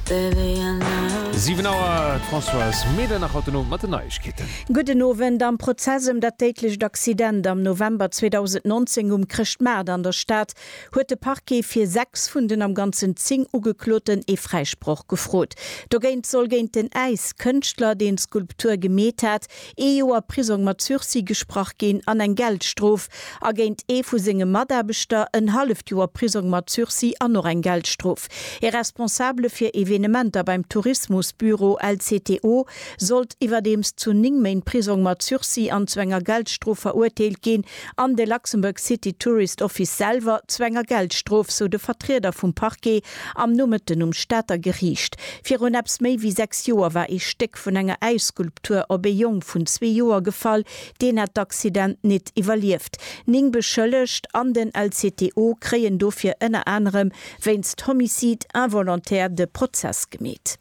7 Auer, d'Françoise Meder nach haut den Owend mat den Neiegkeeten. Gudden Owend, Am Prozess ëm dat déidlecht Accident am November 2019 um Chrëschtmaart an der Stad huet de Parquet fir 6 vun den am ganzen 10 Ugekloten ee Fräisproch gefrot. Dogéint soll géint den Äiskënschtler, deen d'Skulptur gemeet hat, ee Joer Prisong mat Sursis gesprach ginn an eng Geldstrof, a géint ee vu senge Mataarbechter en halleft Joer Prisong mat Sursis an och eng Geldstrof. E Responsabele fir Evenementer beim Tourismusbüro, LCTO, sollt iwwerdeems zu 9 Méint Prisong mat Sursis an zu enger Geldstrof verurteelt ginn, An de Luxembourg City Tourist Office selwer zu enger Geldstrof, sou de Vertrieder vum Parquet am Nomëtten um Stater Geriicht. Virun eppes méi wéi sechs Joer war ee Stéck vun enger Äisskulptur op ee Jong vun zwee Joer gefall, deen hat d'Accident nit iwwerlieft. Ning Beschëllegt an den LCTO kréien dofir ënner anerem wéinst Homicide involontaire de Prozess gemeet.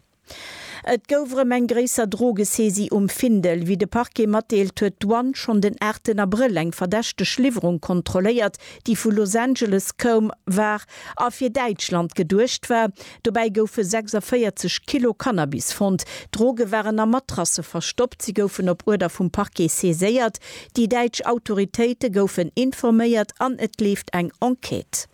Et gouf erëm eng gréisser Drogesaisie um Findel. Wéi de Parquet matdeelt, huet d'Douane schonn den 8 Abrëll eng verdächteg Liwwerung kontrolléiert, déi vu Los Angeles koum war a fir Däitschland geduecht war. Dobäi goufe 46 Kilo Cannabis fonnt. D'Droge waren a Matrasse verstoppt. Si goufen op Uerder vum Parquet saiséiert. Déi däitsch Autoritéite goufen informéiert an et leeft eng Enquête.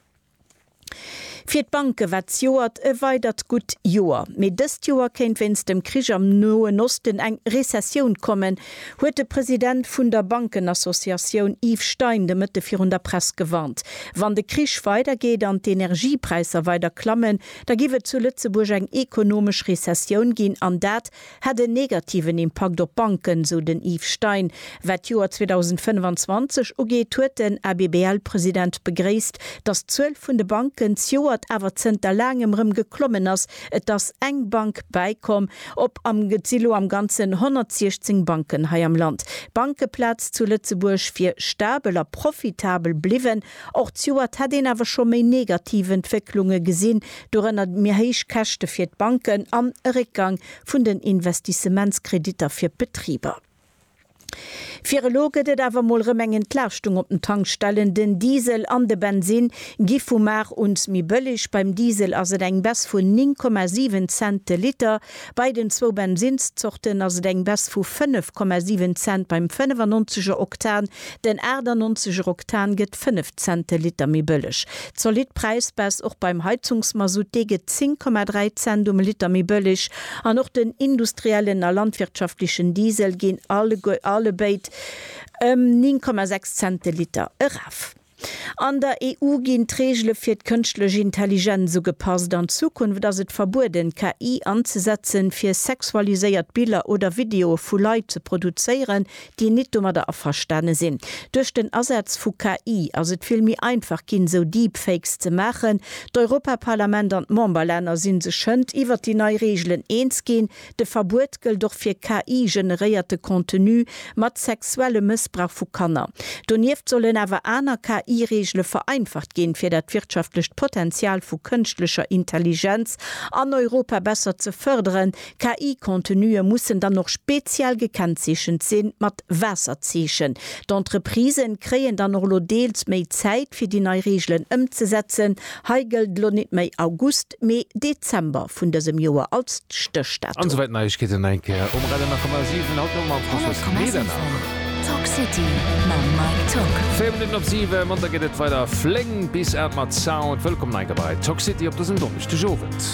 Fir d'Banke war d'Joert e weidert gutt Joer. Mee dëst Joer kéint wéinst dem Krich am Noen Osten eng Rezessioun kommen, huet de President vun der Bankenassociatioun Yves Stein de Mëtte virun der Press gewarnt. Wann de Krich weidergeet an d'Energiepräisser weider klammen, da giff et zu Lëtzebuerg eng ekonomesch Rezessioun ginn, an dat hätt en negativen Impakt op d'Banken, sou den Yves Stein. Wat d'Joer 2025 ugeet, huet den ABBL-President begréisst, datt d'Zuel vun de Banken zjoert awer zënter laangem rëm geklommen ass. Et ass eng Bank bäikomm, op am et si lo am Ganzen 116 Banken hei am Land. D'Bankeplaz zu Lëtzebuerg wier stabel a profitabel bliwwen, Och d'Joert hätt een awer scho méi negativ Entwécklunge gesinn, dorënner méi héich Käschte fir d'Banken an e Réckgang vun den Investissementskreditter fir d'Betriber. Fir elo gëtt et awer mol rëm eng Entlaaschtung op den Tankstellen. Den Diesel an de Bensinn gi vu Mar un méi bëlleg. Beim Diesel ass et eng Baisse vun 9,7 Cent de Liter. Bei den zwou Bensinnszorten ass et eng Baisse vu 5,7 Cent beim 95 er Oktan, den 98 er Oktan gëtt 5 Cent de Liter méi bëlleg. Zolidd Präisbaisse och beim Heizungsmasutt, dee gëtt 10,3 Cent um Liter méi bëlleg an och den industriellen a landwirtschaftlechen Diesel ginn allebéid ëm 9,6 Cent de Liter eraf. An der EU ginn d'Reegele fir d'kënschtlech Intelligenz ugepasst. An Zukunft ass et verbueden, KI anzesetzen, fir sexualiséiert Biller oder Videoe vu Leit ze produzéieren, déi nit domadder averstane sinn. Duerch den Asaz vu KI ass et vill méi einfach ginn, sou Deepfakes ze maachen. D'Europaparlament an d'Memberlänner si sech hënt iwwert déi nei Reegelen eens ginn, De Verbuet gëllt och fir KI-generéierte Contenu mat sexuellem Mëssbrauch vu Kanner. Donieft sollen awer aner KI-Reegele vereinfacht ginn, fir dat wirtschaftlecht Potenzial vu kënschtlecher Intelligenz an Europa besser ze fërderen. KI-Contenue mussen dann och speziell gekennzeechent sinn, mat Waasserzeechen. D'Entreprisë kréien dann och elo deels méi Zäit, fir déi nei Reegelen ëmzesetzen. Hei gëllt elo net méi August. August, mee Dezember vun dësem Joer als Stéchdatum. An esouwäit Neiegkeeten eng Kéier um Radio 10,7. Haut no mam François Medernach. 100,7 Talk City mam Mike Tock. 4 Minutten op 7, Manter geet et weider flénk bis 8 mat Sound. Wëllkomm en eng Kéier bei Talk City op dësem Donneschdegowend.